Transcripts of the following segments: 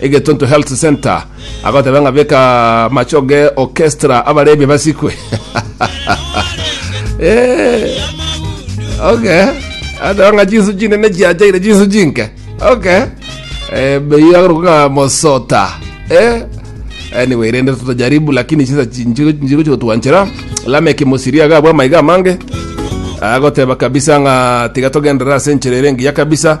egetuntu health center agoteba ng'a beka machoge orchestra abarebi basikwe Eh, okay ateba ng'a jinsu chinene chiachaire jinsu chinke okay Eh, beyo agorwa ng'a mosota Eh, anyway rende tutajaribu lakini chisa chinjiru chinjiru chigotwanchera lameki musiria agabwa amaiga amange agoteba kabisa ng'a tiga togendera ase enchera ere engiya kabisa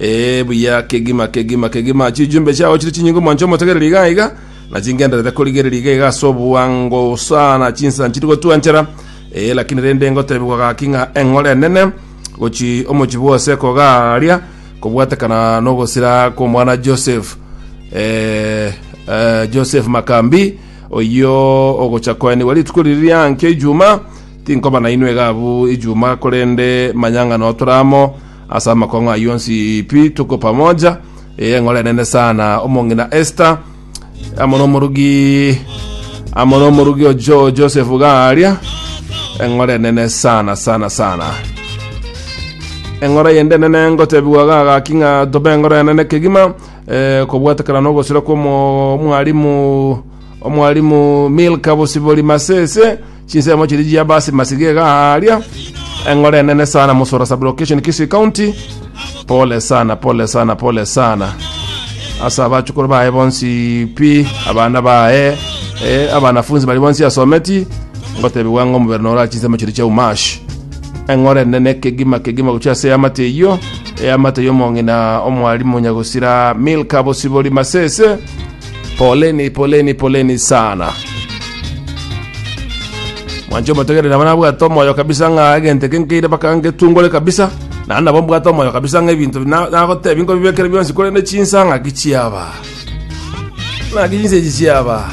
Ee, buya, kegima, kegima, kegima, chijumbe chiao chire chinyinge omwancho omotegereri iga iga, na chingenderete korigereria iga iga ase oboango sana, chinsa nchiri gotwanchera. Ee, lakini rende ngotebigwa gaki ng'a eng'ora enene gochi omochie bwose kogaria, kobwatekana nogosira kw'omwana Joseph, eh, eh, Joseph Makambi, oyio ogocha koenigwa rituko riri riankio Ijuma, tinkoba nainwe iga abwo Ijuma, korende manya ng'a noo tore amo, Ase amakong'o ayio onsi pi tuko pamoja, eye eng'oro enene sana, omong'ina Esther, amo n'omorugi amo n'omorugi ojo Joseph Garia, eng'oro enene sana sana sana. Eng'oro yende enene ngotebigwa gagaki ng'a tobe eng'oro enene kegima, eh, kobwatekana n'ogosira kw'omo- omwarimu omwarimu Milka Bosibori Masese, Chinsemo chiria chia basi masiga iga aria eng'ora enene sana musoro sublocation Kisii County pole sana pole sana pole sana asa abachukuru baye bonsi pi abana baye eh, abanafunzi bari bonsi asometi ngotebiwa ng'a omobere nora chinsemo chiria chia umashi eng'ora enene kegima kegima gochia ase amate eyio eyamate y'omong'ina omwarimu nyagosira milka bosibori masese poleni poleni poleni sana mwancho motegerere abana bwate omoyo kabisa ng'a egento eke nkeire baka ngetungore kabisa na nabo mbwate omoyo kabisa ng'a ebinto na- nagotebi nkobibekere bionsi korende chinsa ng'aki chiaba ng'aki chinsa echi chiaba